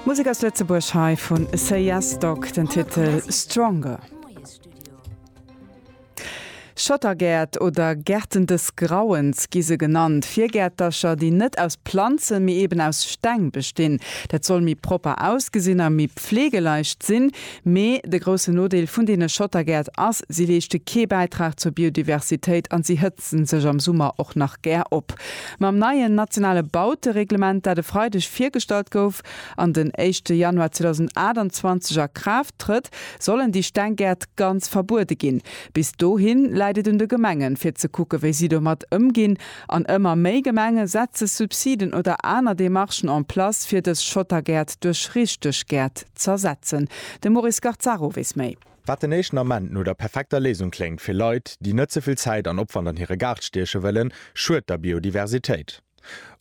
Musek aus Lëtzebuerg hei vu Say Yes Dog, den Titel Stronger. Schottergäert oder Gärten des Grauens gi se genannt, Virgäertercher, déi net aus Planzen, mee eben aus Steng bestinn. Dat soll méi propper ausgesinn a méi pflegeleicht sinn. Mee de groussen Nodeel vun deene Schottergäert ass, si leeschte kee Bäitrag zur Biodiversitéit an si hält se sech am Summer och nach gär op. Mam neien nationale Bautereglement, dat e Freideg virgestallt gouf an den éischte Januar 2028 a Kraaft trëtt, sollen déi Stenggäert ganz verbuede ginn. Bis dohi läit et un de Gemengen, fir ze kucken, wéi si domat ëmginn. An ëmmer méi Gemenge setze Subsiden oder aner Demarchen en place, fir dës Schottergäert duerch richteg Gäert z'ersetzen. De Maurice Garzaro weess méi. Wat den éischten Ament no der perfekter Léisung kléngt fir Leit, déi net ze vill Zäit an Opwand an hire Gaart stieche wëllen, schued der Biodiversitéit.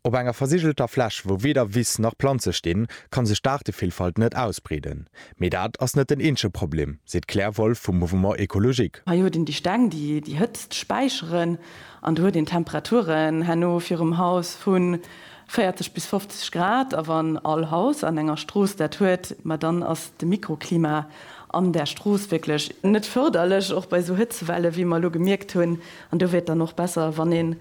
Op enger versigelter Fläch, wou weder Wiss nach Planze stinn, kann sech d'Aartevillfalt net ausbreeden. Mee dat ass net den eenzege Problem, seet d'Claire Wolff vum Mouvement Ecologique. Hei huet een déi Steng, déi déi Hëtzt späicheren. An do huet een Temperaturen herno virum Haus vu 40 bis 50 Grad, a wann all Haus an enger Strooss dat huet, ma dann ass de Mikroklima an där Strooss wierklech net fërderlech, och bei esou Hëtzewelle wéi mer elo gemierkt hunn. An do wier et dann och besser, wann een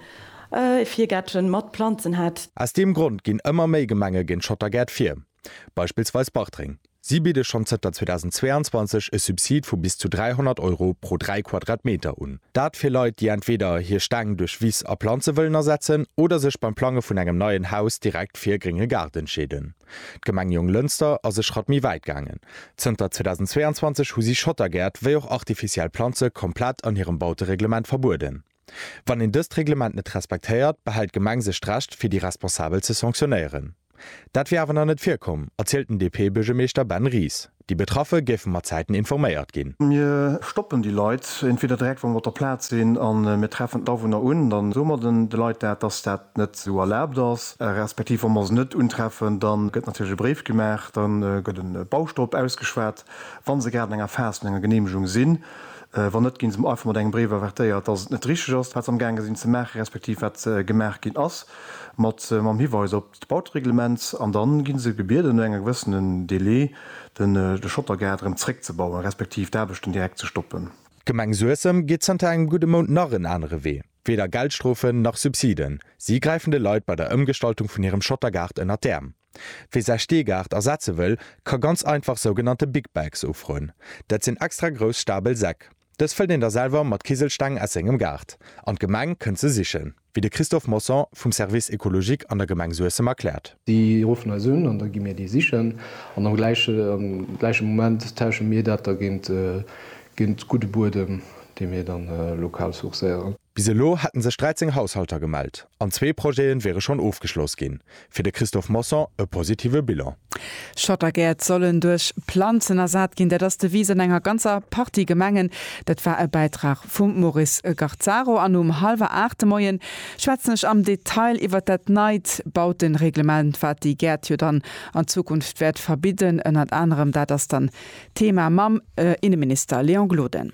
ee Virgäertchen mat Planzen hätt. Aus deem Grond ginn ëmmer méi Gemenge géint Schottergäert vir. Beispillsweis Bartreng. Si bidde schonn zënter 2022 e Subsid vu bis zu 300 Euro pro 3 Quadratmeter un. Dat fir Leit, déi entweder hir Stäng duerch Wiss a Planze wëllen ersetzen oder sech beim Plange vun engem neien Haus direkt fir e grénge Gaart entscheeden. D'Gemeng Jonglënster ass e Schratt méi wäit gaangen. Zënter 2022 hu si Schottergäert wéi och artificiell Planze komplett an hirem Bautereglement verbueden. Wann een dëst Reglement net respektéiert, behält d'Gemeng sech d'Recht, fir déi Responsabel ze sanktionéieren. Dat wier awer nach net virkomm, erzielt den DP-Buergermeeschter Ben Ries. Déi Betraffe géife mat Zäiten informéiert ginn. Mir stoppen déi Leit entweder direkt, wa mer op der Plaz sinn, a mir treffen d'Awunner un. Da soe mer de Leit dat, dass dat net esou erlaabt ass. Respektiv wa mer se net untreffen, da gëtt natierlech e Bréif gemaach, da gëtt e Bauschter op ausgeschwat, wa se grad an enger Phas vun enger Geneemegung sinn. Wann net, ginn se einfach mat engem Bréif avertéiert, dass et net richteg ass, wat se amgaange sinn ze maachen, respektiv wat gemaach ginn ass, mat mam Hiweis op d'Bautereglement. An da ginn se gebieden, no engem gewëssenen Délai den de Schottergaart erëm zréckzebauen, respektiv d'Aarbechten direkt ze stoppen. D'Gemeng Suessem geet zënter engem gudde Mount nach en anere Wee. Weder Geldstrofen, nach Subsiden. Si gräifen de Leit bei der Ëmgestaltung vun hirem Schottergaart ënnert d'Äerm. Wee säi Steegaart ersetze wëll, ka ganz einfach sougenannte Big Bags ufroen. Dat sinn extra grouss stabel Säck. Dës fëllt een da selwer mat Kiselsteng aus sengem Gaart an d'Gemeng kënnt se sichen, wéi de Christophe Mosson vum Service écologique an der Gemeng Suessem erkläert. Si ruffen eis un an da gi mir déi sichen an am gläiche Moment tausche mir dat da géint gudde Buedem, dee mir da lokal sourcéieren. Bis elo hätten sech 13 Haushalter gemellt an zwee Projete wiere schonn ofgeschloss ginn. Fir de Christophe Mosson e positive Bilan. Schottergäert sollen duerch Planzen ersat ginn. Dat ass Devise an enger ganzer Partie Gemengen. Dat war e Bäitrag vum Maurice Garzaro. An um hallwer 8 de Moien schwätzen ech am Detail iwwert dat neit Bautenreglement, wat déi Gäert jo dann an Zukunft wäert verbidden. Ënnert anerem dat ass dann d'Thema mam Inneminister Léon Gloden.